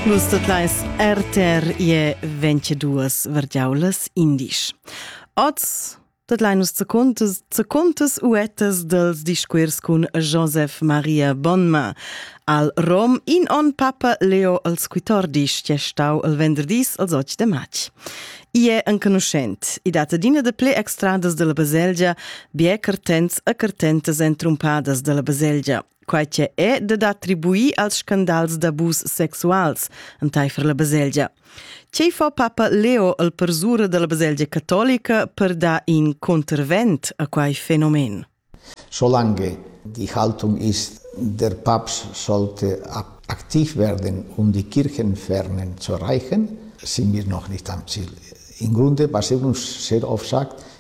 Vus tot leis RTR ie 22 vergiaulas indisch. Oz tot leinus zu contes, zu contes uettes dels discuirs cun Joseph Maria Bonma. Al Rom in on papa Leo als quitordis che stau el venderdis als 8 de matg. I è enconuschent. I data d'ina de ple extradas della baselgia, bie cartents e cartentas entrumpadas della baselgia. quai che è dad attribuir als scandals d'abus sexuals entaifer la baselgia. Tgei fa papa Leo al persura dalla baselgia catolica per dar in contravent a quei fenomen? Solange die Haltung ist, der Papst sollte aktiv werden, um die Kirchenfernen zu erreichen, sind wir noch nicht am Ziel. Im Grunde, was er uns sehr oft sagt,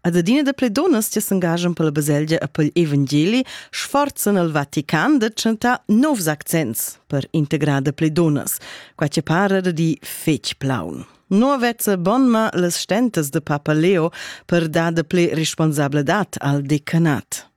Ad adina da ple dunnas che s'engagian per la baselgia e per l'evangeli sforzan al Vatican da chantar novs accents per integrar da ple dunnas, qua che para da di fetg plaun. No vezza bonma las stentas de Papa Leo per dar da ple responsabladad al decanat.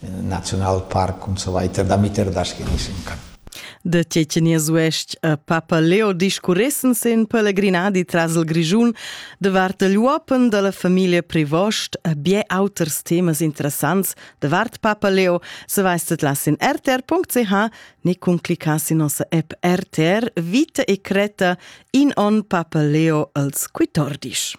Nationalpark und so weiter, damit er das genießen kann. De Tschetschenias uestg a Papa Leo discurressen sin pelegrinadi tras il Grischun davart il uopen dalla famiglia Privost a bie auters temas interessants davart Papa Leo, se veistet las in rtr.ch ni cun cliccas in nossa app RTR Vita e creta in on Papa Leo als Quitordisch.